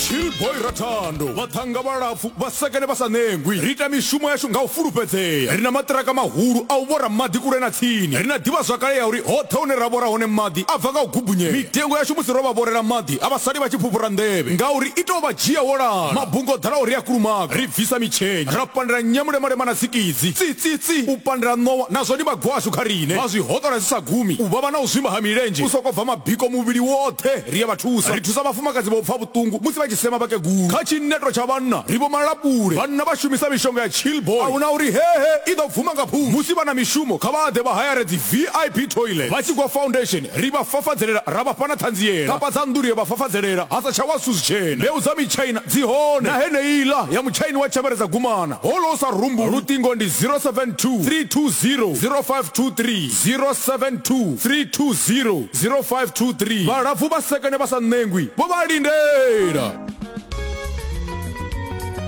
chillboy rathando vhaṱhanga vhalapfu vhasekene vha sa ṋengwi ri ita mishumo yashu nga u fulufhedzea ri na maṱiraka mahulu a u vhora maḓi kule na tsini ri na ḓivhazwakale ya uri hoṱhe hune ra vhora hone maḓi a bva nga u gubunyela mitengo yashu musi ro vha vhorela maḓi a vha sali vha tshi fhufhura nḓevhe ngauri i tou vha dzhia wo lala mabunga o ḓalaho ri a kulumaga ri bvisa mitshenya ra pandela nyamulemalema na tsikidzi Tsitsi, u pandela ṋowa nazwo ndi magwashu kha riṋe. Vha zwi hoṱola zwi sa gumi, u vhavha na u zwimba ha milenzhe, u sokou bva mabiko muvhili woṱhe. Ri ya vha thusa. Ri thusa vhafumakadzi vha u pfa vhuṱungu musi vha tshi sema vhakegulu. Kha tshineto tsha vhanna ri vho malapule. Vhanna vha shumisa mishonga ya Chillboy. A hu na uri hehe i ḓo bvuma nga phungo. Musi vha na mishumo kha vha ḓe vha hayare dzi VIP toilet. Vha tshi gwa foundation ri vha fafadzelela ra vha fha na ṱhanziela. Kapa dza nnḓu ri a vha fafadzelela ha sa tsha wa zwithu zwitshena. Mbeu dza mitshaina dzi hone, na heneiḽa ya mutshaini wa tshembere dza gumana. Holo u sa rumbu luṱingo ndi 072 320 0523 072 320 0523 Vhalapfu vha sekene vha sa ṋengwi vho vha lindela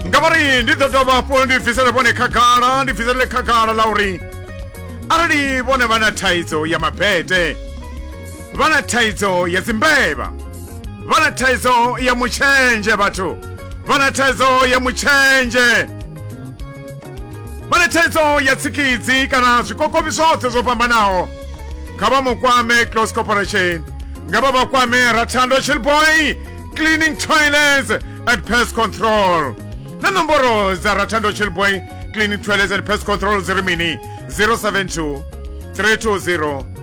nga vha ri ndi ḓo dovha hafhu ndi bvisele vhone khagala ndi bviselele khagala ḽa uri arali vhone vha na thaidzo ya mabete vha na thaidzo ya dzimbevha vha na thaidzo ya mutshenzhe vhathu vha na thaidzo ya mutshenzhe vha na thaidzo ya tsikidzi kana zwikokovhi zwoṱhe zwo fhambanaho kha vha mu kwame close corporation nga vha vha kwame rathando chilboy cleaning toilets and pest control na nomboro dza rathando chilboy cleaning toilets and pest control dzi ri mini 072 320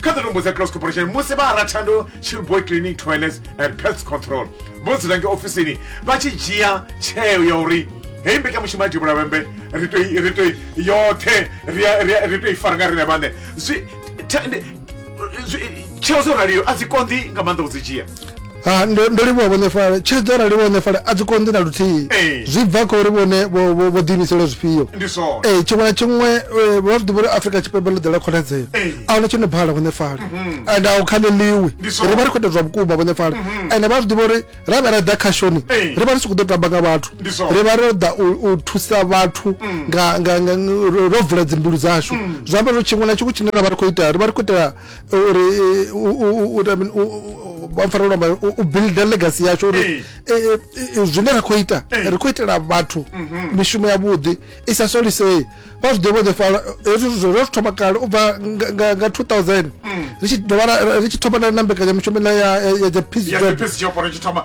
kha dza tombo dza close corporation musi vha arathando chillboy cleaning toilets and pest control vho dzula nge ofisini vha tshi dzhia tsheo ya uri heyi mbekanyamushumo ya divhula vhembe ri to i- ri to i- yoṱhe ri a- ri a- ri to i fara nga rine vhaṋe zwi ta- ndi- zwi- tsheo dzo raliyo a dzi konḓi nga maanḓa u dzi dzhia Ah, ndo ndo livhuwa vhone fale tshiri dzo rali vhone fale a dzi konḓi na luthihi Ee. zwi bva kha uri vhone vho- vho vho ḓiimisela zwifhio ndi zwone ee tshiṅwe na tshiṅwe eh, vha zwi ḓivha uri afrika tshipembe ḽo ḓela khonadzeo Ee. a huna tshi no bhala vhone fale and a u khaleliwi Ndi zwone. ri vha ri khou ita zwa vhukuma vhone fale ende vha zwi ḓivha uri ra vha ra ḓa khashoni Ee. ri vha ri si khou ḓo tamba nga vhathu Ndi zwone. ri vha ro ḓa u- u thusa vhathu nga- nga- nga- ro ro vula dzimbilu dzashu zwi amba uri tshiṅwe na tshiṅwe tshine ra vha ri khou ita ri vha ri khou itela uri vhafarelwa mbayo u builda legacy yasho uri eh. Eh, eh, zwine ra khou ita ri khou itela vhathu mhm. mishumo ya vhuḓi i sa solisei vha zwi ḓivha ḓi fala hezwi zwo zwo thoma kale u bva nga 2000 mm. ri tshi dovha ri tshi thoma na mbekanya mishumo ya ya ya peace job ya peace job ri tshi thoma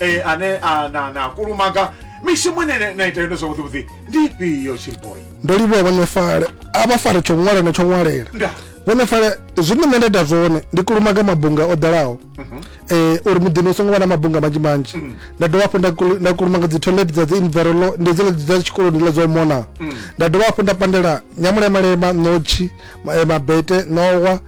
e, ane a, na, na kulumaga mishumo ine na- na ita yone zwavhuḓi vhuḓi ndi ifhio chilboy ndo livhuwa vhone fale a vha fare tsho ṅwala na tsho ṅwalela nda vhone fale zwine nṋe nda ita zwone ndi kulumaga mabunga o ḓalaho um uri muḓini u songo vha na mabunga manzhi manzhi nda dovha hafhu nda kulu- nda kulumaga dzi toilet dza dzi invero lo ndi dzile dza tshikoloni ḽa dzo mona nda dovha hafhu nda pandela nyamulemalema ṋotshi ma- eh, mabete ṋowa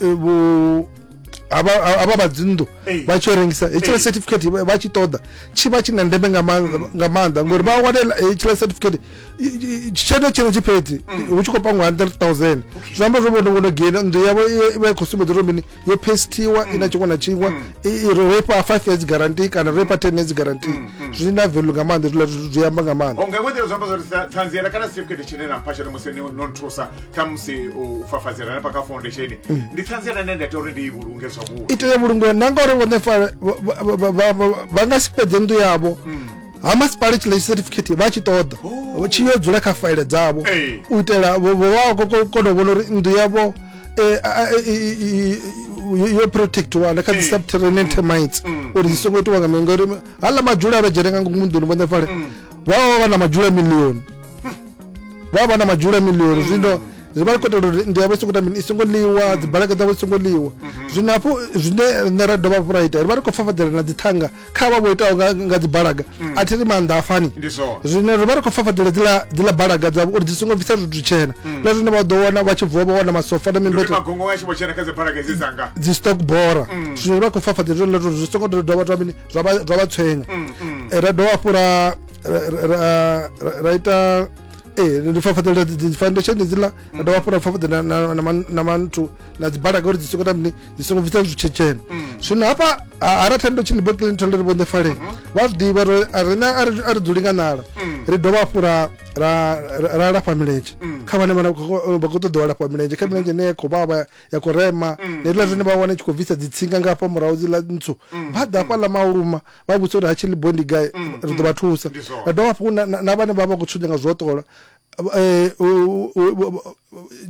eh, vho avha vha dzinḓu vha tshi rengisa hetshiḽa certificate vha tshi ṱoḓa tshi vha tshi na ndeme nga maanḓa ngori vha wane hetshiḽa certificate tshelede tshino tshi fhedzi mm. hu tshi khou pangwa hundred thousand zwi amba zwo vhono ngono gena nnḓu yavho i vha i khou sumbedza uri mini yo pestiwa i na mm. tshiṅwe na tshiṅwe mm. ro ifha five years guarantee kana ro ifha ten years guarantee zwi na velu nga maanḓa zwiḽa zwi amba nga maanḓa khamusi u fafadzela na paka foundation mm. ndi ṱhanziela ine nda ita uri ndi i vhulunge zwavhuḓi i tea vhulungiwa na ngauri vhone fa vha nga si fhedze nnḓu yavho mm. ha masipala tshilei certificate vha tshi ṱoḓa oh. tshi yo dzula kha faile dzavho u itela vho vha kona u vhona uri nnḓu yavho eh, yo protectiwa na kha dzi mm. subterranean termites mm. uri dzi songo itiwa nga mini ngauri hala madzhula a vha dzhene nga ngomu nḓuni vhone fale mm. vha vha vha na madzhula milioni vha vha na madzhula milioni zwino zwi vha kho itelwa uri ndi yavho songo tamini i songo ḽiwa dzi balaka dzavho songo ḽiwa zwino hafhu zwine rine ra dovha hafhu ra ita ri vha ri khou fafadzela na dzithanga kha vha vho itaho nga dzi balaga a thi ri maanḓa a fani zwino ri vha ri khou fafadzela dzila dzila balaga dzavho uri dzi songo bvisa zwithu tshena na zwine vha ḓo wana vha tshi vuwa vha wana masofa na mimbeto dzi stock bora zwino ri vha khou fafadzela zwine ḽa zwi songo dovha dovha mini zwa vha tshwenya mm, mm. Eh, ra dovha hafhu ra ita ee eh, ndi fafaḓela dzi foundation dziḽa ra dovha hafhu ra fafaḓela na manthu na dzibalaga uri dzi songo ta mini dzi songo bvisa zwitshetshene mm. zwino hafha a ra thendo tshini bill clinton ri vhonḓe faleni mm-hmm. vha zwi ḓivha ri rina a ri dzuli nga nala mm. ri dovha hafhu ra lafha milenzhe mm. kha vhane vha khou ṱoḓiwa lafha milenzhe kha milenzhe ine ya khou vhavha ya khou rema mm, heiḽa zwine mm. vha wana tshi khou bvisa dzitsinga nga hafha murahu dziḽa ntswu mm, vha ḓa hafha ḽa mauluma vha vhudza uri ha tshi liboe ndi gai ri ḓo vha thusa ra dovha hafhu na vhane vha vha khou tshudza nga zwoṱola eh,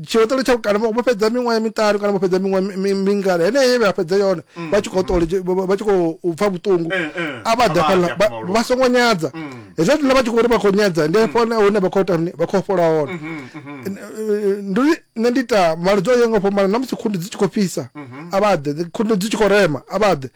tshiotolo tsha kana vho fhedza miṅwaha miṱanu kana vho fhedza miṅwaha mingana heneyo vha fhedza yone vha tshi khou ṱole vha tshi khou pfa vhuṱungu eh, eh. a vha ḓa fhala vha songo nyadza hezwo zwine vha tshi khou uri vha khou nyadza ndi hafho hune vha khou tani vha khou fhola hone mm-hmm, mm-hmm. ndi nṋe ndi ita maludza o yaho nga fhambana na musi khundu dzi tshi khou fhisa mhm. a vha ḓe khundu dzi tshi khou rema a vha ḓe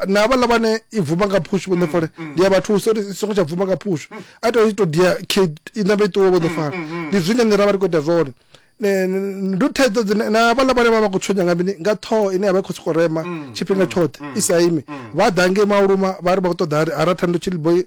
na havhaḽa vhane i bvuma nga phushu vho ḓefole mm, mm. ndi a vha thusa uri i songo tsha bvuma nga phushu mm. a tou i tou dia kid i ṋambe i ṱuwe vho ḓefala ndi zwine nṋe ra vha ri khou ita zwone ndi thaidzo dzine na havhaḽa vhane vha vha khou tshonya nga mini nga ṱhoho ine ya vha i khou sokou rema tshifhinga tshoṱhe i sa imi vha ḓa ngei mauluma vha ri vha khou ṱoḓa ha ra thando tshiliboi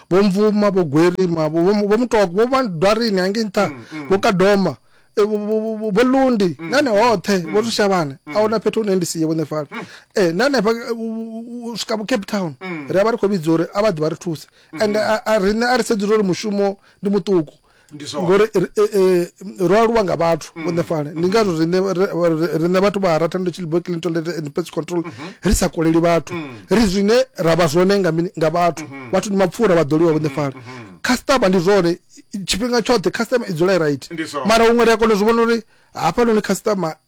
vho mvuma vho gwerima vho vho- vho mutoko vho vha dwarini hangei nṱha vho kadoma eh, vho- vho- vho- vho- vho lundi nane hoṱhe vho ri shavhane a huna fhethu hune ndi siye vhone fana Eh, na hanefha eh, u- u- u- u swika vho cape town ri a vha ri khou vhidza uri a vha ḓi vha ri thuse and a- a- riṋe a ri sedzula uri mushumo ndi muṱuku ngori eh, ro aluwa nga vhathu mm. vhone fale ndi ngazwo riṋe vhathu vha ratando chilbo clinton and pets control mm-hmm. ri sa koleli vhathu mm. ri zwine ra vha zwone nga vhathu mm-hmm. vhathu ndi mapfura vha ḓoliwa vhone fale mm-hmm. customer ndi zwone tshifhinga tshoṱhe customer i dzula i right mara huṅwe ri a kona zwi vhona uri hafhanoni customer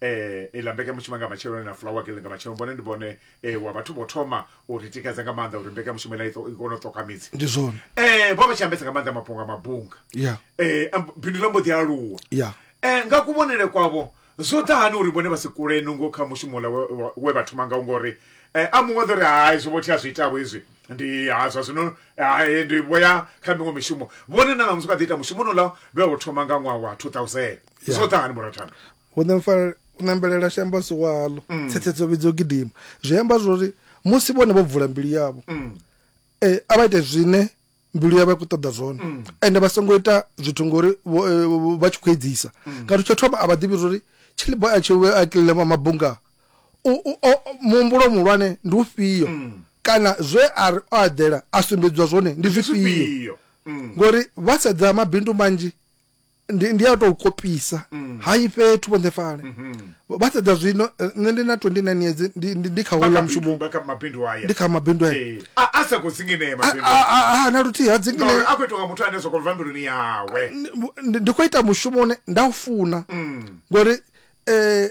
eh ila mbekanyamushumo nga matsheloni na flower girl nga matsheloni vhone ndi vhone eh, wa vhathu vho thoma u ri tikedza nga maanḓa uri mbekanyamushumo ila i to- i kone u ṱoka midzi ndi zwone eh vho vha tshi ambesa nga maanḓa mafhungo a mabunga ya eh am- bindu ḽa mbo ḓi aluwa ya eh nga kuvhonele kwavho zwo ḓa hani uri vhone vha si kule nungo kha mushumo ula we- wa- we vha thoma ngawo ngori eh a muṅwe ḓo ri hai zwo vhothi a zwi itavho izwi ndi ha zwa zwino hai ndi vho ya kha miṅwe mishumo vhone na ṋamusi vha ḓi ita mushumo nouḽa vhe wo thoma nga ṅwaha wa 2000 Yeah. zwo ṱangani bora thando u nemfa- u nembelela xi amba siwalo Mm. tsetsetso vhidzo gidima zwi amba zwori musi vhone vho bvula mbilu yavho Mm. eh, a vha ite zwine mbilu yavho ya khou ṱoḓa zwone Mm. ende vha songo ita zwithu ngori vho- eh, vho- vha tshi khou edzisa Mm. ngauri tsho thoma a vha ḓivhi zwori chilibo a tshi a kilema mabunga u- u- o- o- muhumbulo muhulwane ndi ufhio Mm. kana zwe a ri o aḓela a sumbedziwa zwone ndi zwifhio Zwifhio. Mm. ngori vha sedza mabindu manzhi ndi ndi a tou kopisa mm. ha i fhethu vhone fale mm-hmm. vha sedza zwino eh, nṋe ndi na 29 years ndi ndi ndi kha hola mushumo ndi kha mabindu haya ndi kha mabindu haya eh, a a sa ko singinea mabindu a a a na luthi ha dzingine no a kwetwa muthu ane soko vha mbiluni yawe ndi ko ita mushumo ne nda ufuna mm. ngori eh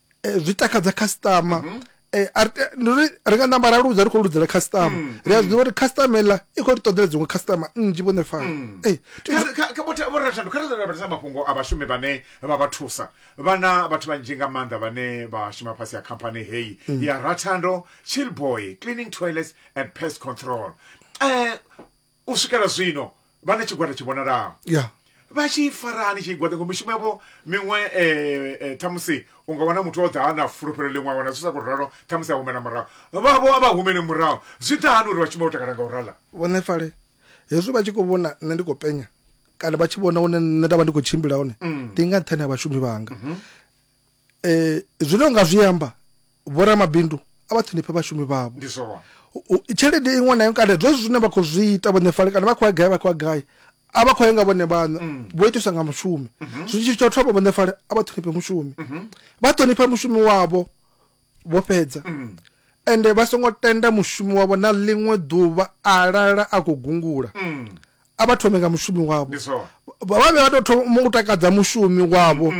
eh, zwi takadza khasiṱama mm -hmm. Eh, eh, ri nga namba ra ludza ri khou ludzela customer mm, mm. ri a zwiḓivha uri customer eḽa i khou ri ṱoḓela dziṅwe customer nnzhi vhone fana mm. eh, vhorathandu kha ri lavhelesa mafhungo a vhashumi vhane vha vha thusa vhana vhathu vhanzhi nga maanḓa vhane vha shuma fhasi ya khamphani heyi ya rathando chillboy cleaning toilets and pest control um U swikela zwino, vha na tshigwada tshi vhonalaho. Ya. Vha tshi fara hani tshigwada? Ngo mishumo yavho miṅwe, e, e, khamusi u nga wana muthu o ḓa a na fulufhelo ḽiṅwe, a wana zwi sa khou ralo, khamusi a humela murahu. Vhavho a vha humeli murahu. Zwi ḓa hani uri vha shume vho takala nga u rala? Vhuḓifari. Hezwi vha tshi khou vhona nṋe ndi khou penya, kana vha tshi vhona hune nṋe nda vha ndi khou tshimbila hone, ndi nga nṱhani ha vhashumi vhanga. eh zwine unga zwi amba vho ramabindu a vha ṱhonifhe vhashumi vhavho tshelede iṅwe na iṅwe kana zwezwi zwine vha khou zwi ita vhone fale kana vha khou ya gai vha khou ya gai a vha khou ya nga vhone vhaṋe mm. vho itiswa nga mushumi mhm. zwitshi tsho thoma vhone fale a vha ṱhonifhe mushumi mhm. vha ṱhonifha mushumi wavho vho fhedza mm. ende vha songo tenda mushumi wavho na ḽiṅwe ḓuvha a lala a khou gungula mm. a vha thome nga mushumi wavho vha vhe vha tou thoma u takadza mushumi wavho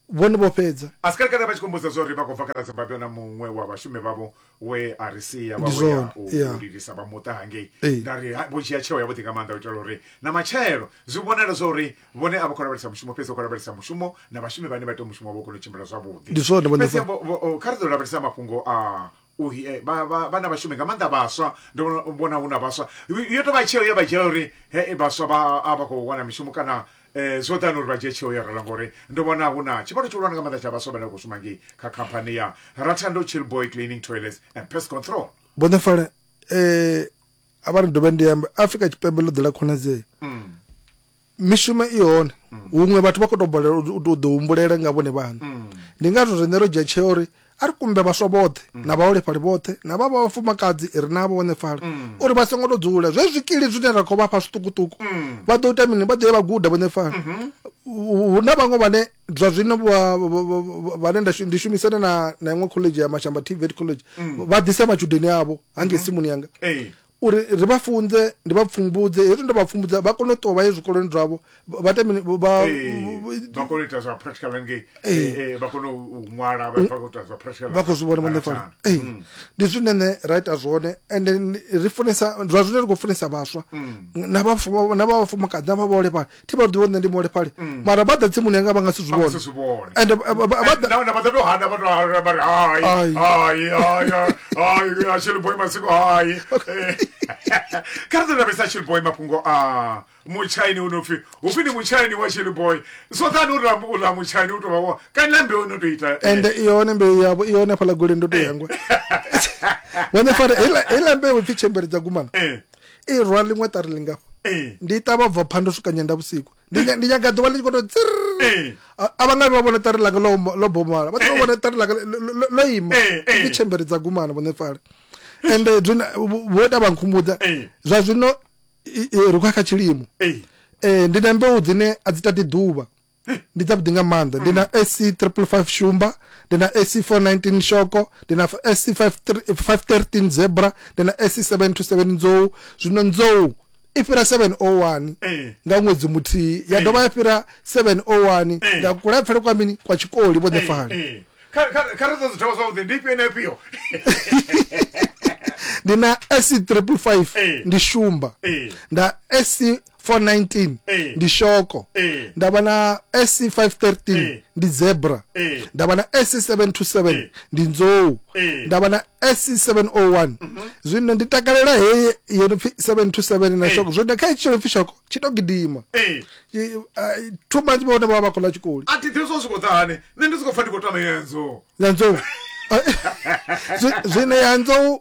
vhone vho fhedza. Asker kana vha tshi khou mbudza zwa uri vha khou bva kana Zimbabwe na muṅwe wa vhashumi vhavho we a ri sia vha vho ya u lilisa vha muṱa hangei. Nda ri vho dzhia tsheo yavhuḓi nga maanḓa u itela uri na matshelo zwi vhonale zwa uri vhone a vha khou lavhelesa mushumo fhedzi vha khou lavhelesa mushumo na vhashumi vhane vha ita mushumo wavho u kone u tshimbila zwavhuḓi. Fhedzi kha ri ḓo lavhelesa mafhungo a vhana vhashumi nga maanḓa vhaswa ndo vhona hu na vhaswa yo tovha tsheo ya vha dzhia uri he vhaswa vha a vha khou wana mishumo kana um zwo ḓani uri vha dzhie tsheo ya rala ngori ndo vhona hu na tshivhalo tshihulwane nga maanḓa tsha vhaswa vhane vha khou shuma ngei kha khamphani ya rathando chillboy cleaning toilets and pest control vhoṋefala um a vha ri dovhe ndi ambe afrika tshipembe ḽo ḓela khonadzeo mm. mishumo i hone huṅwe vhathu vha khou tou bolela u tou ḓi humbulela nga vhone vhaṋe ndi ngazwo riṋe ro dzhia tsheo uri a ri kumbe vhaswa vhoṱhe na vhaholefhali vhoṱhe na vha vha vhafumakadzi ri na vhaholefhali uri vha songo tou dzula zwe zwikili zwine ra khou vha fha zwiṱukuṱuku vha ḓo ita mini vha ḓo ye vha guda vhaholefhali hu na vhaṅwe vhane zwa zwino vhane ndi shumisane na na iṅwe college ya mashamba tvet college vha ḓisa matshudeni avho hangei simuni yanga uri ri vha funze ndi vha pfumbudze hezwi ndo vha pfumbudza vha kone u ṱuwa vha ye zwikoloni zwavho vha- vha tamini vha vha kone u ita zwa practical ngei Eh, eh, vha kone u u ṅwala vha vha khou ita zwa practical vha khou zwi vhona vhone fana Kana. Ee, Mm. ndi zwine nṋe ra ita zwone and then ri funesa zwa zwine ri khou funesa vhaswa na vhafu- na vha vhafumakadzi na vha vhaholefhali thi vha ḓivha nṋe ndi muholefhali mm. mara vha ḓa tsimuni yanga vha nga si zwi vhone and vha ḓa to hana vha to hana vha ri hai hai hai hai ya shell boy masiko hai kha ri lavhesa shell boy mafhungo a mutshaini u no pfi hu pfi ndi mutshaini wa shell boy so thani u rambo ula mutshaini u to vha wo kana na mbeu no to ita eh. and i hone mbeu yavho i hone fhala gole ndo to yangwa eh. wane fara ila ila mbeu pfi chembere dza gumana eh. i rwa ḽiṅwe ṱari lingafha ndi i ṱavha bva phanḓa u swika nyenda vhusiku ndi nyaga ḓuvha ḽi tshi koto tsir a vha nga vha vhona ṱari langa ḽo bomala vha ḓo vhona ṱari langa ḽo ima ndi tshembere dza gumana vhone fale ende vho ita vha nkhumbudza zwa zwino ri khou ya kha tshilimo ndi na mbeu dzine a dzi tati ḓuvha ndi dzavhuḓi nga maanḓa ndi na mm. ac triple five shumba ndi na ac 419 shoko ndi na ac 513 zebra ndi na ac 727 nzou zwino nzou i fhira 701 eh. nga ṅwedzi muthihi ya eh. dovha ya fhira 701 eh. nga kulapfele kwa mini kwa tshikoli vho ḓefali kha ri ṱoḓi thoma zwavhuḓi ndi ifhio na ifhio ndi na ac triple five ndi shumba nda ac 419 eh. ndi shoko eh. ndavha na sc 513 eh. ndi zebra ndavha na sc 727 ndi nzou ndavha na sc 701 mhm. zwino ndi takalela heye yo no pfi 727 na shoko zwo nda kha itshi no pfi shoko tshi to gidima two months vhone vha vha khola tshikoli a tithe zwo swiko dzahane nṋe ndi soko pfa ndi khou tama yenzo na nzou zwine ya nzou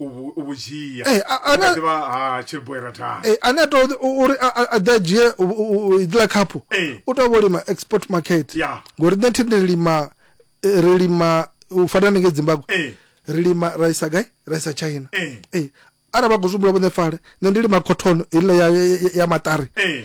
u vhu- u vhu dzhia Eh, a- a- Vhukati vha ha chilboy ratana Eh, ane a to uri a- a- a ḓe a dzhie u- u- u- iḽa khaphu Eh. u tou vho lima export market Ya. ngori nṋe thi ndi lima eh, ri lima u fana nenge zimbabwe Eh. ri lima ra isa gai ra isa china Eh. Eh, arali vha khou zwi humbula vhone fale nṋe ndi lima cotton iḽa ya, ya, ya maṱari Eh.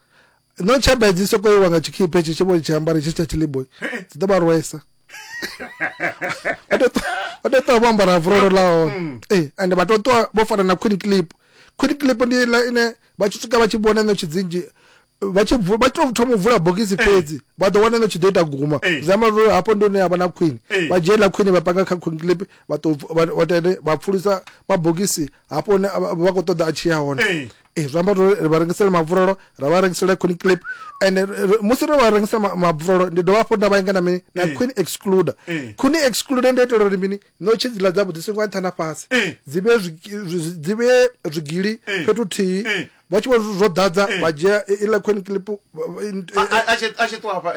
no tshaba hedzi sokou iwa nga tshikhiphe hetshi tshi vho tshi ambara hetshi tsha tshiliboy dzi ḓo vha rwesa vha tou ṱuwa vho ambara vurolo la hone mm. ee ende vha tou ṱuwa vho fana na queen clip queen clip ndi la ine vha tshi swika vha tshi vhona ṋotshi dzinzhi vha tshi vha tshi tou thoma u vula bogisi eh. fhedzi vha ḓo wana ṋotshi ḓo ita guma eh. zwi amba uri hafho ndi hune ya vha na queen eh. vha dzhie ḽa queen vha panga kha queen clip vha tou vha tende vha pfulisa mabogisi hafho hune vha khou ṱoḓa a tshi ya hone ee zwi amba uri ri vha rengisele mabvurolo ra vha rengisela queen clip and musi ro vha rengisa mabvurolo ndi dovha hafhu nda vha inga na mini na queen excluder queen excluder ndi itela uri mini no tshi dziḽa dza vhuḓisi nga nṱha na fhasi dzi vhe dzi vhe zwigili fhethu thihi vha tshi vho zwo ḓadza vha dzhia iḽa queen clip a tshi ṱuwa hafha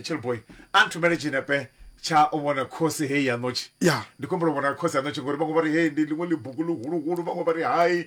chillboy a nthumele tshinepe tsha u vhona khosi heyi ya ṋotshi ndi khombela u vhona khosi ya ṋotshi ngori vhaṅwe vha ri hei ndi ḽiṅwe ḽibugu ḽihuluhulu vhaṅwe vha ri hai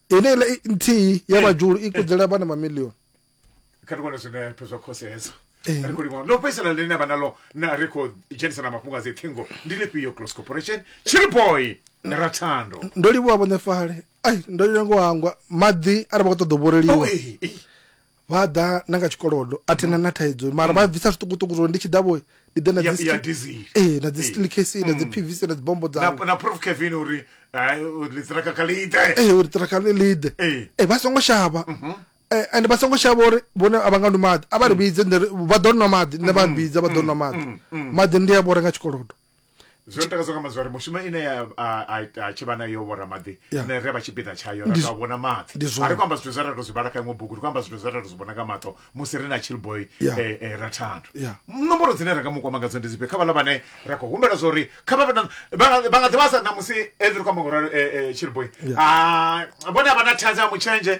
ine iḽa i- nthihi ya Eh. vhajulu i kudzela vhana mamilioni kha ri vhone zwinepe zwa khosi hedzo Eh. ri khou livhona ḽo fhedzisela ḽine vha naḽo na ri khou dzhenisa na mafhungo a dzi ṱhingo ndi lifhio close corporation chiriboy ra thando ndo livhuwa vhone fale ai ndo lengo hangwa maḓi arali vha khou ṱoḓa u vhoreliwa Oh, eh, eh. vha a ḓa na nga tshikolodo a thina na thaidzo mara vha bvisa zwiṱukuṱuku zwori ndi tshi ḓa vho ndi ḓe na Ya- dzi ya sti- diesel. ee na dzi Ee. steel case na dzi pvc na dzi bombo na, dzavho na prof kevin uri ai, uri litsiraka kha liite ee uri ṱiraka ḽi ḽiḓe Ee. ee vha songo shavha Eh, and vha songo shavha uri vhone a vha nga nwi maḓi a vha ri vhidze nṋe ri- vha ḓo nwa maḓi nṋe vha vhidza vha ḓo nwa maḓi maḓi ndi a vhora nga tshikolodo zwo ntakadza nga mazwari mushumo ine a tshi vha nayo vhoramaḓi ne re vha tshipiḓa tshayo ra tou vhona maḓi a ri khou amba zwithu zwe ra tou zwi vhala kha iṅwe bugu ri khou amba zwithu zwe ra tou zwi vhona nga maṱo musi ri na chillboy eh, eh, ra thando nomboro dzine ra nga mu kwama ngadzo ndi dzifhio kha vhala vhane ra khou humbela zwa uri kha vha nga ḓivha sa na musi ri khou amba ngoralo eh, chillboy ah, vhone a vha na thaidzo ya mutshenzhe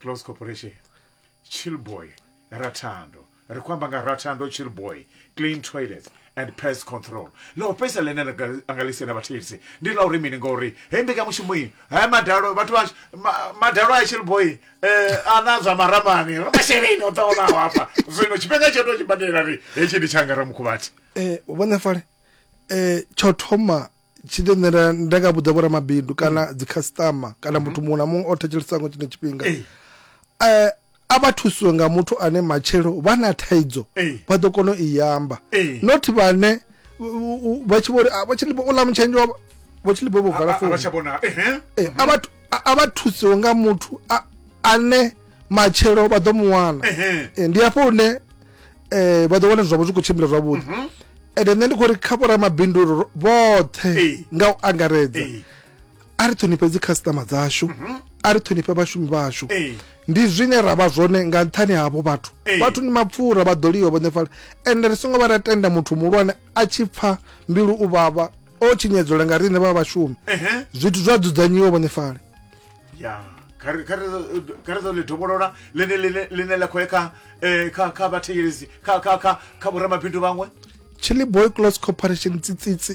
close corporation chillboy rathando ri khou amba nga rathando chillboy clean toilet and pest control ḽa u fhedzisa ḽine nda nga- a nga ḽisela vhathetshelesi ndi ḽa uri mini ngauri hei mbekanyamushumo iyi haya madalo vhathu vha ma- madalo a chillboy um a na zwa maramani ri masheleni o ṱahonaho hafha zwino tshifhinga tsho to tshi badela ri hetshi ndi tshanga ramukhubathi Eh, vhone fale eh, tsho thoma tshi ḓo nṋe nda- nda nga vhudza vhoramabindu kana dzikhasiṱama kana muthu muṅwe na muṅwe o thetshelesa ngo tshine tshifhinga Ee. Eh, a vha thusiwe nga muthu ane matshelo vha na thaidzo Ee. vha ḓo kona u i amba Ee. not vhane u- u- u- vha tshi vho ri "Ah, vho tshilibo u ḽa mutshenzhe wa vho tshilibo vho vala founu avhatsha vhona ehe Eh, a vha thu- a- a vha thusiwe nga muthu a- ane matshelo vha ḓo mu wana Ehe. Eh, ndi hafho hune eh, vha ḓo wana zwavho zwi khou tshimbila zwavhuḓi mhm. ende nṋe ndi khou ri kha vhoramabindu vhoṱhe nga u angaredza a ri ṱhonifhe dzi khasitama dzashu mhm. a ri ṱhonifhe vhashumi vhashu ndi zwine ra vha zwone nga nṱhani havho vhathu vhathu ni mapfura vha ḓo liwa vhone fala ende ri songo vha ra tenda muthu muhulwane a tshi pfa mbilu u vhavha o tshinyedzola nga riṋe vha vhashumi zwithu zwa dzudzanyiwa vhone fale ya kha ri- kha ri- kha ri ḓo ḽi dovholola ḽine ḽine- ḽine ḽa khou ya kha eh, kha kha vhathetshelesi kha kha kha kha vhoramabindu vhaṅwe chili boy close corporation tsitsitsi